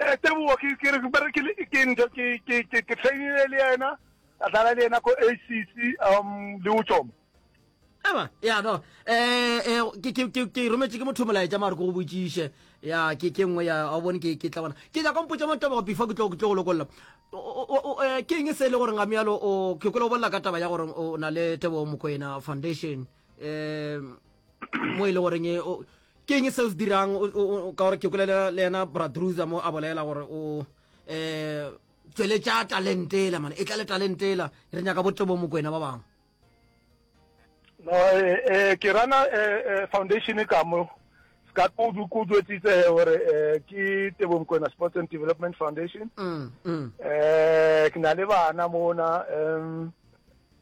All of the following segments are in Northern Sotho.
Eh, tebogo ke ke re ba re ke le- ke ntho ke ke ke ke trainile le yena ka dlala le yena ko acc um le o tsoma aba ya no eh eh, ke ke ke ke rometse ke motho molaetša mare ke go botšiše ya ke ke nngwe ya a bone ke ke tla bona ke ja kompotša mo taba before ke tlo ke tlo go lokolla O- o- o- o, eh, ke eng se e le gore ngamialo o ke kwela o bolela ka taba ya gore o na le tebo mokoena foundation um mo e le goreng e- o- Ke eng se o se dirang ka gore ke kolela le yena bradruza mo a bolela gore o um eh, tsweletša talentela mane e tla le talentela re nyaka botebo mokwena ba bangwe no eh, eh, ke rana foundation ka mo ka kudu kudu etsitse gore ke tebo mokwena sports and development foundation um ke na le bana mona um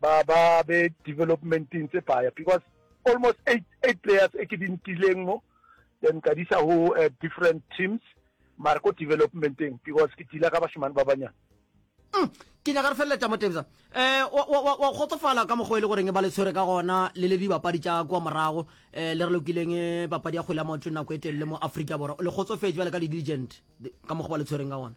ba ba be developmenteng tse paya because almost eight eight players e ke di ntileng mo then ka disa ho uh, different teams mara ko developmenteng because ke tila ka bashimane ba banyana mm, ke nyaka re feleletša mo tebsa um wa kgotsofala ka mokgwa e le goreng e ba le tshwere ka gona le le dibapadi tša kua morago um le re lokileng eh, papadi ya kgwele ya maoto nako e telele mo aforika borwa le kgotsofetse bjale ka di-diligent ka mokgwa ba le tshwereng ka gona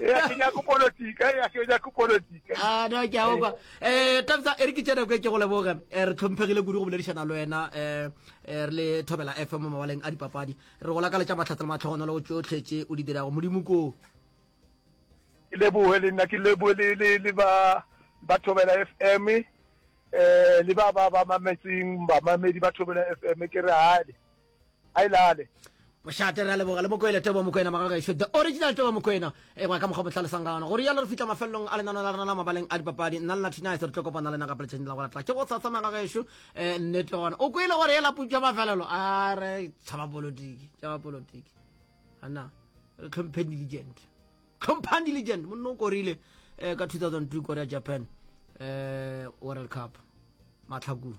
Ee, a ke nyako politika, ee, a ke nyako politika. Ah, no, ke a okwa. Eh, Tafsa, e re ke tšena kwe ke go leboge. Eh, re tlhomphegile kudu go boledišana le wena eh, eh, re le Thobela FM mo mawaleng a dipapadi. Re go lakaletša mahlatse le matlhogonolo go tšohle tše o di dirago. Modimo koo. Ke leboge le nna, ke leboge le le le ba ba Thobela FM eh le ba ba ba mametseng bamamedi ba Thobela FM ke re hale. a ile a le mošate re a leboga le mokoele tebo mokoena magagešo the original tebo mokoena e gwa ka mokgwa motlhalosang gana go rialo re fitlha mafelelong a lenano la rena la mabaleng a dipapadi nna le natinise re tlo kopana le naga peletšheng la go latla ke go tsatsa magagešo um eh, nnete gona o kwele gore e laputša mafelelo a re tshaba polotiki tshaba polotiki ana re tlhompheng diligent tlhomphang diligent monne o korile um ka 2002 korea japan um world cup matlhakong